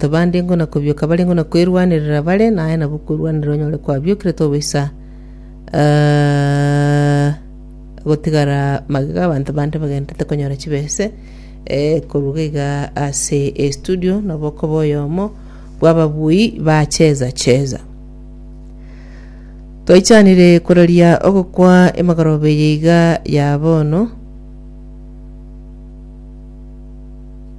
Abande ingo na kobioka bare ingo na kwerwanerera bare, na aye nabwo kwerwanerera onyore kwabiokire tobaisa eh, gotigara magega abanto bande bagenderete konyora chibese eh, koruga iga ase estudio nabo okoba oyomo bw'ababui ba cheza cheza twaichanire koraria ogokwa emagoroba eye iga ya bono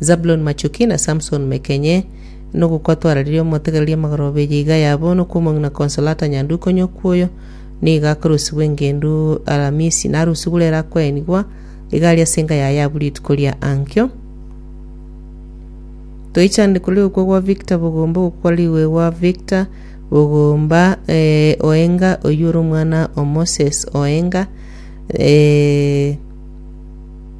Zabuloni Machuki na Samson Mekenye, Nogwo kwatwararirie omotegereria amagoro obeyo iga yabo nokwomong'ina Consolata Nyanduko onye okwoyo nigo akarusigwa engendu Alamisi narusigwe ere akoenigwa iga aria ase enka yaye abwo rituko ria ankio. Toichanire korwa ogokwa gwa Victor Bogomba ogokwa riwegwa Victor Bogomba eh, Oenga oyio ore omwana o Moses Oenga eh,